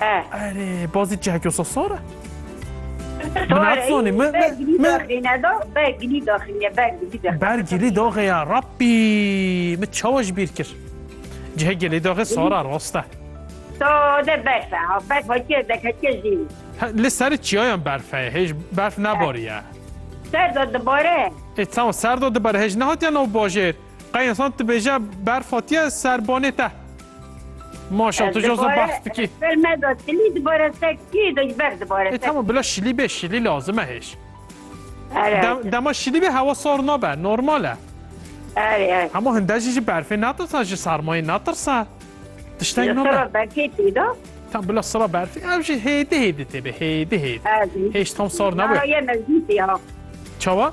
He. Erê, bazî cihekê wisa sar e? Min natsoni, min, min, min. Bergilî daxê ya, Rabbî, min çawa ji bîr kir? Cihekê lê daxê sar e, rast e. Sade berf e, ha, berf hatiye zeketiye jî. Li serê çiyayan berf heye, hêj berf nebariye. Ser de dibare. Ê, tamam, ser de dibare, hêj nehatiye nav bajêr. Qey insan dibêje berf hatiye ser banê te. Maşa tu joza behs dikî. Ser me da tilî dibare te kî de ber dibare. E tamam bila şilî bê şilî lazim e hêj. Dema şilî bê hewa sar nabe normal e. Hema hinde jî ji berfê natirsa ji sermayê natirsa. Tişteng nabe. Berfê tê da. Tam bila sira berfê ev jî hêdî hêdî tê bê hêdî hêdî. Hêj tam sar nabe. Çawa?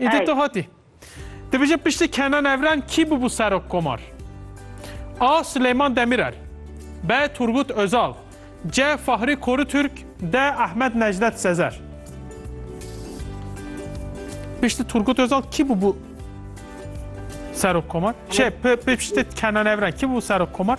Îdî tu hatî. Dibêje piştî Kenan Evren kî bûbû serok komar? A. Silêman Demîrel B. Turgut Özal C. Fahri Korutürk D. Ahmet Necdet Sezer Piştî Turgut Özal kî bûbû serok komar? Şey, piştî Kenan Evren kî bûbû serok komar?